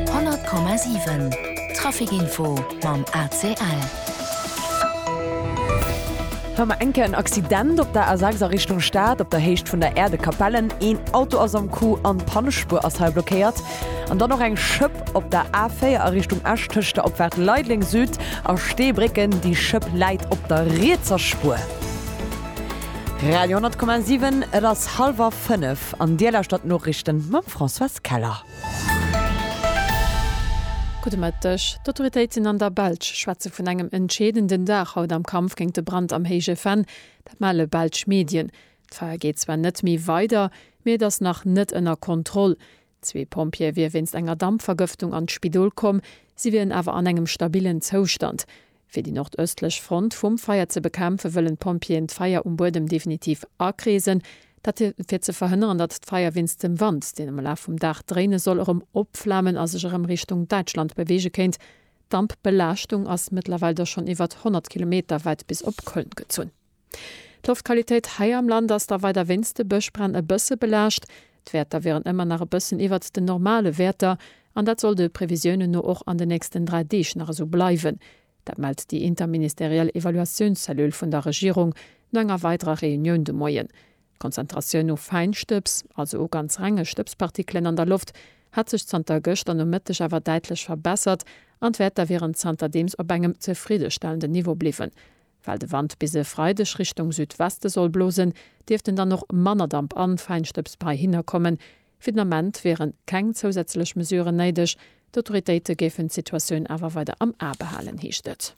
100,7 Trafic info mam ACL. Hei mar eng Kéier en Accident op der A6 a Richtung Stad, op der Héicht vun der Erde Kapellen. Een Auto ass am Coup an d'Pannespuer ass hei blockéiert. An dann och eng Schëpp op der A4 a Richtung Esch tëscht der Opfaart Leideleng Süd a Steebrécken. Déi Schëpp läit op der rietser Spuer. Radio 10,7 Et ass hallwer fënnef an Dir lauschtert d'Noriichten mam. Françoise Keller. Gudde Mëtteg. D'Autoritéiten an der Belsch schwätze vun engem entscheedenden Dag haut am Kampf géint de Brand am Héije Venn. Dat melle belsch Medien. D'Feier geet zwar net méi weider, mee et ass nach net ënner Kontroll. Zwee Pompjeeë wier wéinst enger Dampvergëftung an d'Spidol komm. Si wieren awer an engem stabillen Zoustand. Fir déi nordëstlech Front vum Feier ze bekämpfen, wëllen d'Pompjeeën d'Feier um Buedem definitiv akreesen. Dat fir ze verhënneren, datt d'Feier wéinst dem Wand, deen am Laf vum Dag dréine soll, erëm opflamen a sech erëm Richtung Däitschland beweege kéint. D'Dampbelaaschtung ass mëttlerweil da schonn iwwert 100 Kilometer wäit bis op Köln gezunn. D'Loftqualitéit hei am Land ass da weider wéinst de Bëschbränn e bësse belaascht. D'Wäerter wieren ëmmer nach e bëssen iwwert den normale Wäerter an dat soll de Previsiounen no och an den nächsten 3 Deeg nach esou bleiwen. Dat mellt déi interministeriell Evaluatiounszellule vun der Regierung no enger weiderer Reunioun de Moien. D'Konzentratioun u Fäinstëbs, also u ganz renge Stëbspartikelen an der Loft, hätt sech zanter gëschter Nomëtteg awer däitlech verbessert an d'Wäerter wieren zanterdeems op engem zefriddestellenden Niveau bliwwen. Well de Wand bis e Freideg Richtung Südweste soll blosen, dierft en dann och manner Damp an Fäinstëbs bei hinner kommen. Fir den Ament wiere keng zousätzlech Mesuren néideg. D'Autoritéite géifen d'Situatioun awer weider am A behalen, heescht et.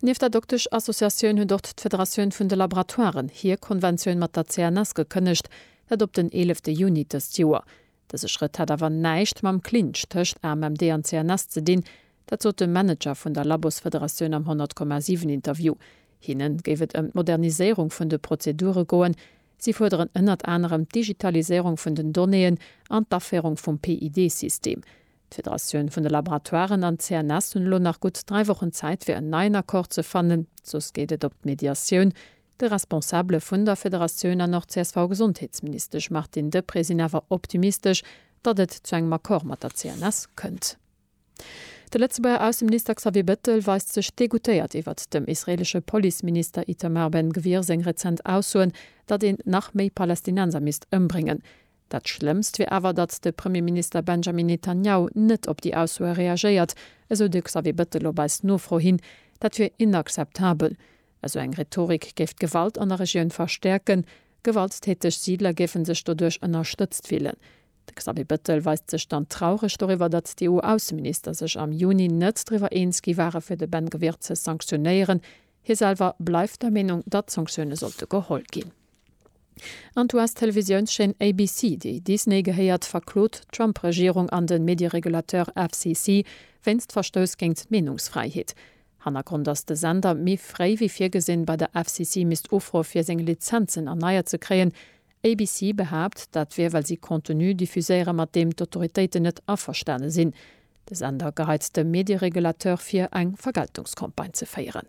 Nieft der Doktesch-Associatioun huet och d'Federatioun vun de Laboratoiren hir Konventioun mat der CNS gekënnegt, dat op den eelefte Juni dëst Joer. Dëse Schrëtt hätt awer näischt mam Clinch tëscht AMMD an CNS ze dinn. Dat sot de Manager vun der Labossfederatioun am 100,7 Interview. Hinne géif et ëm d'Moderniséierung vun de Prozedure goen. Si fuerderen ënnert anerem d'Digitaliséierung vun den Donnéeën an d'Aféierung vum PID-System. D'Federatioun vun de Laboratoiren an d'CNS hunn elo nach gutt dräi Wochen Zäit fir en neien Accord ze fannen, soss geet et op d'Mediatioun. De Responsabele vun der Federatioun an och CSV-Gesondheetsministesch Martine Deprez sinn awer optimistesch, datt et zu engem Accord mat der CNS kënnt. De Lëtzebuerger Ausseminister Xavier Bettel weist sech degoutéiert iwwert dem israeelesche Policeminister Itamar Ben-Gvir seng rezent Aussoen, datt een nach méi Palästinenser misst ëmbréngen. Dat Schlëmmst wier awer, datt de Premierminister Benjamin Netanjahu net op déi Aussoe reagéiert, esou de Xavier Bettel op eis Nofro hin. Dat wier inakzeptabel. Esou eng Rhetorik géif d'Gewalt an der Regioun verstäerken. Gewalttäteg Siidler géife sech doduerch ënnerstëtzt fillen. De Xavier Bettel weist sech dann traureg doriwwer, datt d'EU-Ausseminister sech am Juni net driwwer eens gi ware fir de Ben Gvir ze sanktionéieren, Hie selwer bleift der Meenung, datt Sanktioune sollte geholl ginn. An d'US-Televisiounschaîne ABC, déi Disney gehéiert, verklot d'Trump-Regierung an de Medieregulateur FCC wéinst Verstouss géint d'Meenungsfräiheet. Hannergrond ass, de Sender méi fréi wéi virgesinn bei der FCC misst ufroe fir seng Lizenzen erneiert ze kréien, ABC behaapt, dat wier well si Contenu diffuséiere mat deem d'Autoritéiten net averstane sinn. De Sender geheit dem Medieregulateur vir, eng Vergeltungscampagne ze féieren.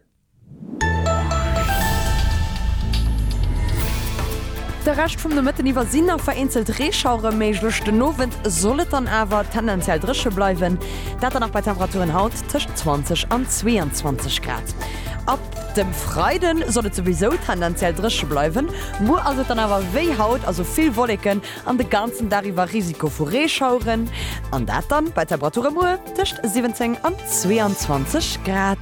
De Rescht vum Nomëtten iwwer sinn nach vereenzelt Reeschauere méiglech, den Owend soll et dann awer tendenziell dréche bleiwen, dat dann nach bei Temperaturen haut tëscht 20 an 22 Grad. Dem Freiden soll et souwisou tendenziell dréche bleiwen, muer ass et dann awer wéi haut, also vill Wolleken an de ganzen Dag iwwer Risiko vu Reeschaueren, an dat dann bei Temperature muer tëscht 17 an 22 Grad.